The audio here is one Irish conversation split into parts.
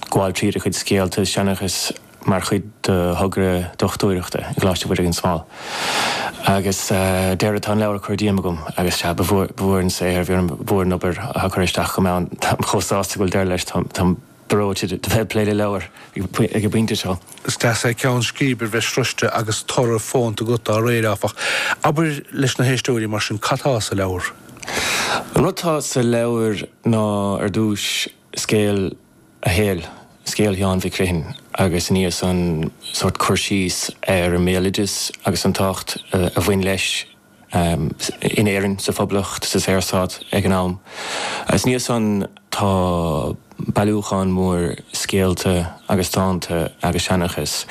gabháil tríd a chuid scéalta is seanchas mar chuid do thogra dochtúireachta i gColáiste Mhuire gan Smál. Agus deireadh tá an leabhar curtha díom agam agus sea, ba mhór an saothar, ba mhór an obair a chur isteach chomh maith, táim chomh sásta go bhfuil deireadh leis, táim breoite de bheith ag plé le leabhar ag an bpointe seo. Is deas é ceann scríbe a bheith sroiste agus toradh fónta agat dá réir, áfach. Abair leis na héisteoirí mar sin cad tá sa leabhar? An rud atá sa leabhar ná, ar dtúis, Scéal a shaoil, scéal Sheáin Mhic Criomhthain agus ansan sórt cur síos ar an mbéaloideas agus an tábhacht a bhain leis in Éirinn, sa Phoblacht, sa Saorstát ag an am. Agus ansan tá bailiúchán mór scéalta agus dánta agus seanchas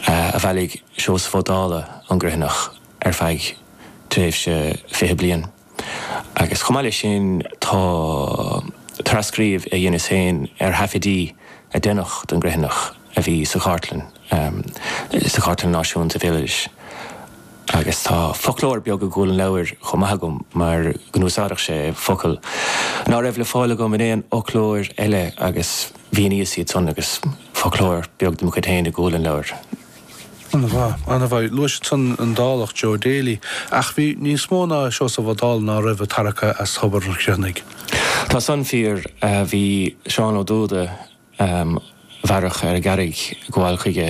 a bhailigh Seosamh Ó Dálaigh ón gCriomhthanach ar feadh tréimhse fiche bliain. Agus chomh maith leis sin tá trascríobh a dheineas féin ar thaifidí a deineadh don gCriomhthanach a bhí sa Chartlann, sa Chartlann Náisiúnta Béaloidis. Agus tá foclóir beag i gcúl an leabhair chomh maith agam mar go n-úsáideadh sé focail ná raibh le fáil agam in aon fhoclóir eile agus mhíníos iad san agus foclóir beag dem chuid féin i gcúl an leabhair. An-mhaith, an-mhaith. Luais ansan an Dálach, Joe Daly, ach bhí níos mó ná Seosamh Ó Dálaigh ná raibh ag tarrac as tobar an Chriomhthanaigh. Tá san fíor. Bhí Seán Ó Dubhda a mhaireadh ar an gCarraig ag gabháil chuige,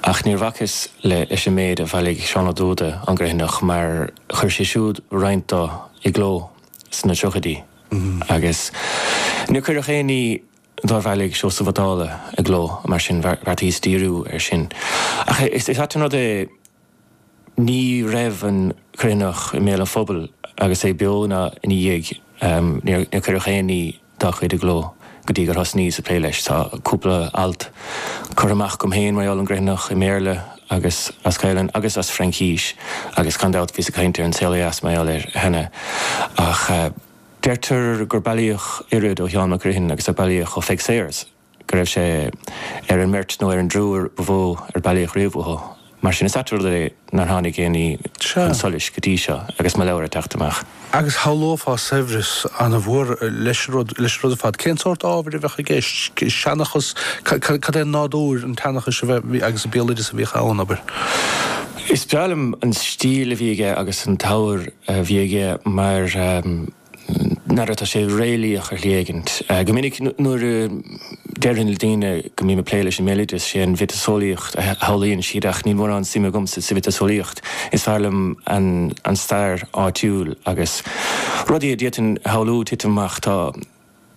ach níor bhacas leis an méid a bhailigh Seán Ó Dubhda ón gCriomhthanach mar chuir sé siúd roinnt do i gcló sna tríochaidí agus níor cuireadh aon ní dár bhailigh Seosamh Ó Dálaigh i gcló, mar sin bheartaíos díriú air sin. Ach is ait an rud é, ní raibh an Criomhthanach i mbéal an phobail agus é beo ná ina dhiaidh, níor cuireadh aon ní dá chuid i gcló go dtí gur thosnaíos ag plé leis. Tá cúpla alt curtha amach agam féin mar gheall ar an gCriomhthanach, i mBéarla agus as Gaelainn agus as Fraincís, agus gan dabht bhíos ag caint ar An Saol ó Dheas mar gheall air cheana ach, Deirtear gur bailíodh oiread ó Sheán Mac Criomhthain agus a bailíodh ó Pheig Sayers, go raibh sé ar an mbeirt nó ar an dtriúr ba mhó ar bailíodh riamh uathu. Mar sin is ait rud é nár tháinig aon ní chun solais go dtí seo agus mo leabhar ag teacht amach. Agus shamhlófá saibhreas an-mhór leis an rud leis an rud ar fad. Cén sórt ábhair a bheadh i gceist? Seanchas? Cad é nádúr an tseanchais a bheith agus an béaloideas a bhíodh ann, abair? Is breá liom an stíl a bhí aige agus an t-abhar a bhí aige mar n'fheadar, tá sé réalaíoch ar shlí éigin. Go minic nuair a deirim le daoine go mbím ag plé leis an mbéaloideas sé an mhiotaseolaíocht a shamhlaíonn siad ach níl mórán suime agamsa sa mhiotaseolaíocht. Is fearr liom an stair áitiúil agus rudaí a d'fhéadfainn a shamhlú titim amach, tá.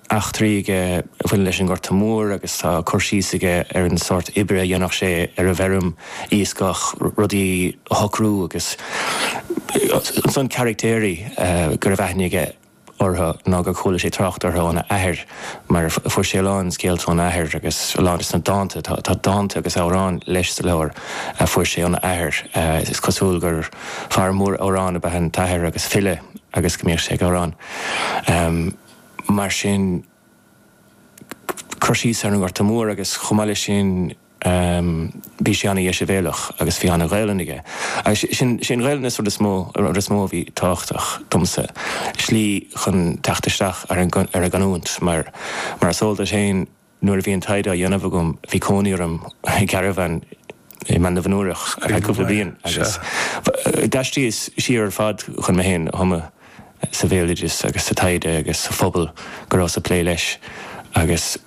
eachtraí aige a bhaineann leis an nGorta Mór agus tá cur síos aige ar an sórt oibre a dhéanadh sé ar an bhfeirm, iascach, rudaí a shocrú agus ansan caraictéirí go raibh aithne aige orthu nó gur chuala sé trácht orthu óna athair mar fuair sé a lán scéalta óna athair agus a lán de sna dánta, tá dánta agus amhráin leis sa leabhar a fuair sé óna athair. Is cosúil gur fear mór amhrán ab ea an t-athair agus file agus go mbíodh sé ag amhrán. mar sin cur síos ar an nGorta Mór agus chomh maith le sin bhí sé ana dheisibhéalach agus bhí ana Ghaolainn aige agus is í an Ghaolainn an rud is mó is mó a bhí tábhachtach domsa slí chun teacht isteach ar an ar an gcanúint mar mar is eol duit féin Nuair a bhí an taighde á dhéanamh agam bhí cónaí orm i gcarabhán i mBaile an Fheirtéaraigh ar feadh cúpla bliain agus d'aistrigheas siar ar fad chun mé féin a thumadh sa bhéaloideas agus sa taighde agus sa phobal go rabhas ag plé leis agus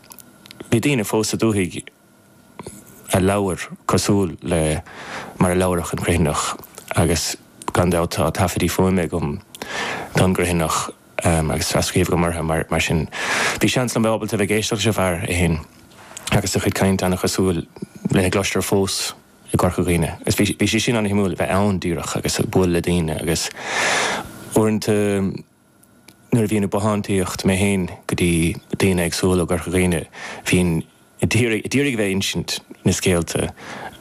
bhí daoine fós sa dúthaigh a leabhair cosúil le mar a labhradh an Criomhthanach agus gan dabht tá taifeadtaí fuaime againn don gCriomhthanach. agus tras-scríobh agam orthu mar sin bhí seans agam bheith ábalta a bheith ag éisteacht leis an bhfear é fhéin agus a chuid cainte an-chosúil le a gcloistear fós i gCorca Dhuibhne agus bhí sé sin an-shuimiúil a bheith ann díreach agus ag bualadh le daoine agus uaireanta nuair a bhínn ag bothántaíocht mé fhéin go dtí daoine éagsúla i gCorca Dhuibhne bhínn Ad iarraidh, ad iarraidh a bheith ag insint na scéalta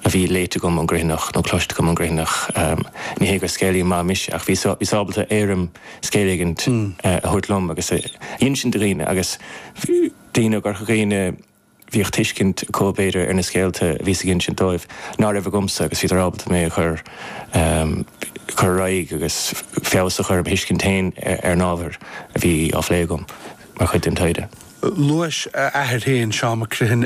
a bhí léite agam ón gCriomhthanach nó cloiste agam ón gCriomhthanach. Ní hé gur scéalaí maith mise ach bhíos, bhíos ábalta éirim scéil éigint a thabhairt liom agus a insint do dhaoine agus daoine ó gCorca Dhuibhne bhíodh tuiscint acu b'fhéidir ar na scéalta a bhíos ag insint dóibh ná raibh agamsa agus bhíodar ábalta mé a chur cur ar aghaidh agus feabhas a chur ar mo thuiscint féin ar an ábhar a bhí á phlé agam mar chuid den taighde. Luais a athair féin, Seán Mac Criomhthain,